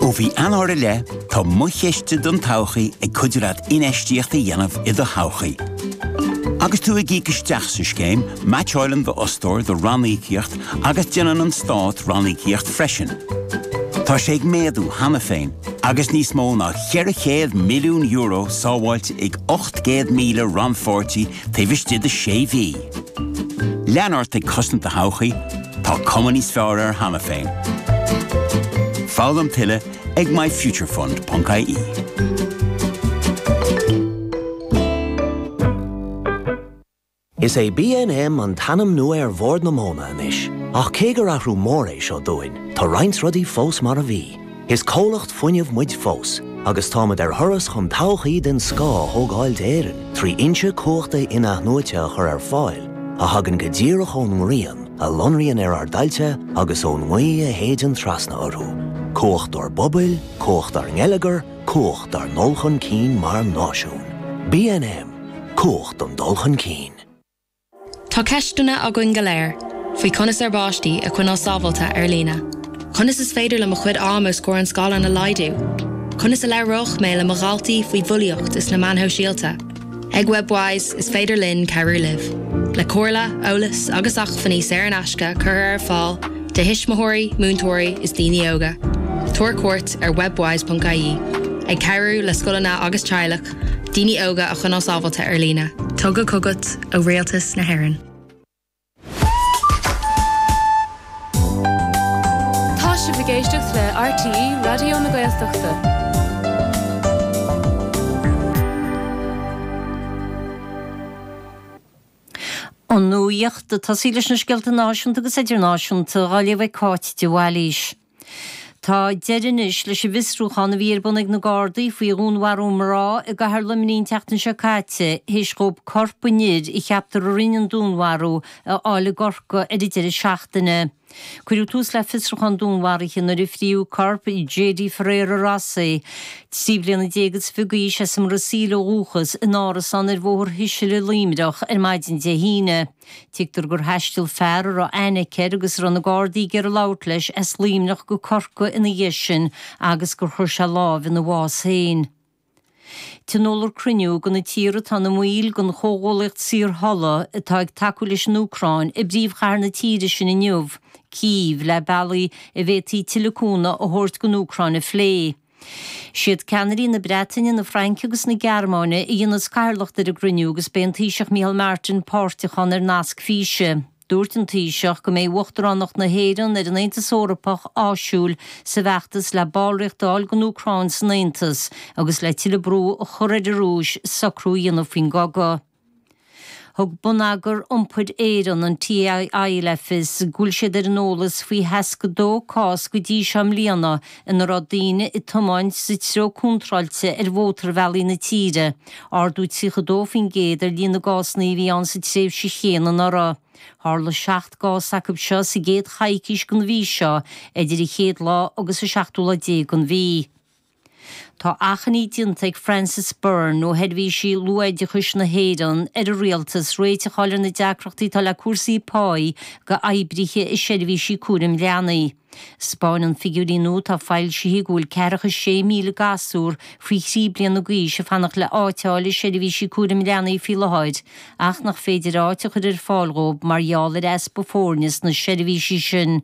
Ó mhí Eanáir i leith, tá Mo Chiste don Todhchaí ag cuidiú leat infheistíocht a dhéanamh i do thodhchaí. Agus tú ag íoc isteach sa scéim, meaitseáileann d'fhostóir do ranníocaíocht agus déanann an Stát ranníocaíocht freisin. Tá sé ag méadú cheana féin, agus níos mó ná €400 milliún sábháilte ag 800,000 rannpháirtí taobh istigh de sé mhí. Lean ort ag cosaint do thodhchaí, tá cuma níos fearr air cheana féin. Foghlaim tuilleadh ag myfuturefund.ie. Is é BNM an t-ainm nua ar Bhord na Móna anois, ach cé gur athrú mór é seo dúinn, tá roinnt rudaí fós mar a bhí. Is comhlacht fuinnimh muid fós agus táimid ar thuras chun todhchaí den scoth a thógáil d'Éirinn trí fhoinsí cumhachta in-athnuaite a chur ar fáil a thagann go díreach ón ngrian a lonraíonn ar ár dtailte agus ón ngaoth a shéideann trasna orthu. Cumhacht dár bpobail, cumhacht dár ngeilleagar, cumhacht dár ndul chun cinn mar náisiún. BNM, Cumhacht don dul chun cinn. Tá ceisteanna againn go léir faoi conas ár bpáistí a choinneáil sábháilte ar líne. Conas is féidir liom mo chuid ama os comhair an scáileáin a laghdú? Conas a labhróidh mé le mo dhaltaí faoi bhulaíocht is na meáin shóisialta? Ag Webwise is féidir linn cabhrú libh, le comhairle, eolas agus acmhainní saor in aisce curtha ar fáil do thuismitheoirí, múinteoirí is daoine óga. Tabhair cuairt ar webwise.ie. Ag cabhrú le scoileanna agus teaghlaigh daoine óga a choinneáil sábháilte ar líne. Tugtha chugat ó Rialtas na hÉireann. Tá sibh ag éisteacht le RTÉ Raidió na Gaeltachta. An nuacht, ag tosaí leis na scéalta náisiúnta agus idirnáisiúnta á léamh ag Cáit de Bhailís. Tá deireadh anois leis an bhfiosrúchán a bhí ar bun ag na Gardaí faoi dhúnmharú mná i gcathair Luimnigh an tseachtain seo caite théis dhóibh corp an fhir a gceaptar a rinne an dúnmharú a fháil i gCorcaigh ar an deireadh seachtaine. Cuireadh tús le fiosrúchán dúnmharaithe nuair a fríodh corp Jady Ferreira Rossi, trí bliana déag is fiche d'aois as an mBrasaíl ó dhúchas, in árasán ar Bhóthar Shuisile i Luimneach ar maidin Dé hAoine. Tuigtear gur thaistil fear a raibh aithne aici air agus a raibh na Gardaí ag iarraidh labhairt leis as Luimneach go Corcaigh ina dhiaidh sin agus gur chuir sé lámh ina bhás féin. Tionóladh cruinniú de na tíortha atá ina mbaill den chomhghuallaíocht saorthola atá ag tacú leis an Úcráin i bpríomhchathair na tíre sin inniu, Cív, le bealaí a bhféadfaí tuilleadh cúnamh a thabhairt don Úcráin a phlé. Is iad ceannairí na Breataine, na Fraince agus na Gearmáine a dhéanfas cathaoirleacht ar an gcruinniú agus beidh an Taoiseach Micheál Martin páirteach ann ar nasc físe. Dúirt an Taoiseach go mbeidh uachtaránacht na hÉireann ar an Aontas Eorpach áisiúil sa bhfeachtas le ballraíocht a fháil don Úcráin san Aontas agus le tuilleadh brú a chur ar an Rúis socrú a dhéanamh faoin gcogadh. Thug Bonneagar Iompair Éireann, an TII, le fios go bhfuil siad ar an eolas faoi 62 cás go dtí seo i mbliana ina raibh daoine ag tiomáint sa treo contráilte ar mhótarbhealaí na tíre, ardú 32% ar líon na gcásanna a bhí ann sa tréimhse chéanna anuraidh. Tharla seacht gcás acu seo sa gcéad choicís den mhí seo, idir an chéad lá agus an seachtú lá déag den mhí. Tá achainí déanta ag Frances Byrne ó Sheirbhísí Luathoideachais na hÉireann ar an Rialtas réiteach a fháil ar na deacrachtaí atá le cúrsaí páí d'oibrithe i seirbhísí cúraim leanaí. Spáineann figiúirí nua atá foilsithe go bhfuil ceathracha is sé míle gasúir faoi thrí bliana d'aois ag fanacht le áit a fháil i seirbhísí cúraim leanaí faoi láthair ach nach féidir áit a chur ar fáil dhóibh mar gheall ar easpa foirne sna seirbhísí sin.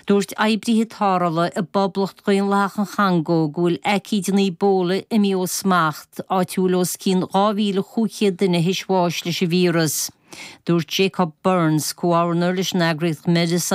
Dúirt oibrithe tarrthála i bPoblacht Dhaonlathach an Chongó go bhfuil aicíd an Ebola imithe ó smacht, áit a bhfuil os cionn 2,500 duine théis bháis leis an víreas. Dúirt Jacob Burns, comhordaitheoir leis an eagraíocht Médecins.